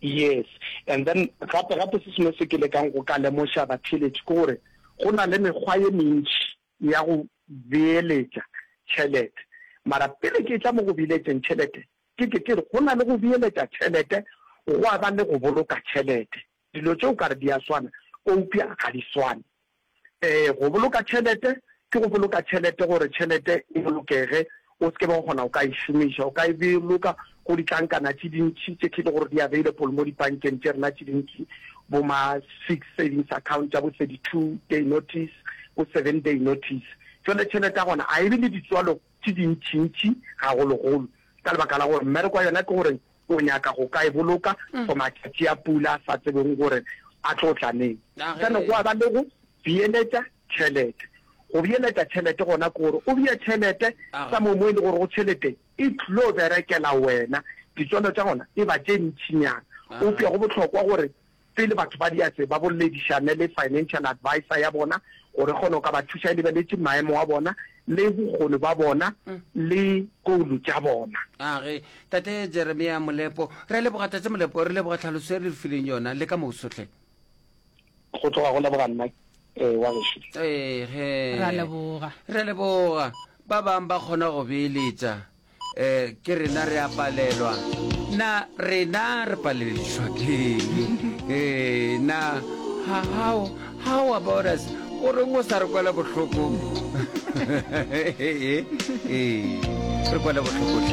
Yes, and then gape gape se sengwe se ke lekang go ka lemoša batheeletši ke gore go na le mekgwa ye mentši ya go beeletša tšhelete. Mara pele ke etla mo go beeletšeng tšhelete, ke ke ke re go na le go beeletša tšhelete gwa ba le go boloka tšhelete. Dilo tše o ka re di a swana, eupša ga di swane. Ee, go boloka tšhelete ke go boloka tšhelete gore tšhelete e bolokege, o se ke be wa kgona go ka e šomiša. O ka e boloka go ditlankana tše dintši tše ke le gore di available mo dipankeng tše rena tše dintši, bo ma fixed savings account tša bo thirty two day notice, bo seven day notice. Jwale tšhelete ya gona ga e be le ditswalo tše dintšintši gagologolo ka lebaka la gore mmereko wa yona ke gore o nyaka go ka e boloka for matšatši a pula a sa tsebong gore a tlo tla neng. Sane gwa ba le go beeletša tšhelete. Go beeletša tšhelete gona ke gore o bee tšhelete somewhere mo e le gorego tšhelete e tlo berekela wena, ditswalo tša gona e ba tše ntšinyana. Eupša go bohlokwa gore Pele batho ba dia tse, ba bolledišane le financial advisor ya bona gore e kgone go ka ba thuša e lebeletše maemo a bona le bokgoni ba bona le goulu tša bona. Age. Tate Jeremia Molepo. Re a leboga, Tate Molepo. Re leboga tlhaloso e le re fileng yona. Le ka moso hle. Go tloga go leboga nna, eh, wa gešo. Ee, ge. Ra leboga. Re a leboga. Ba bang ba kgona go beeletša. Ke rena re a palelwa na rena re paleledišwa keng na how how about us o reng o sa re kwela bohloko ee re kwela bohloko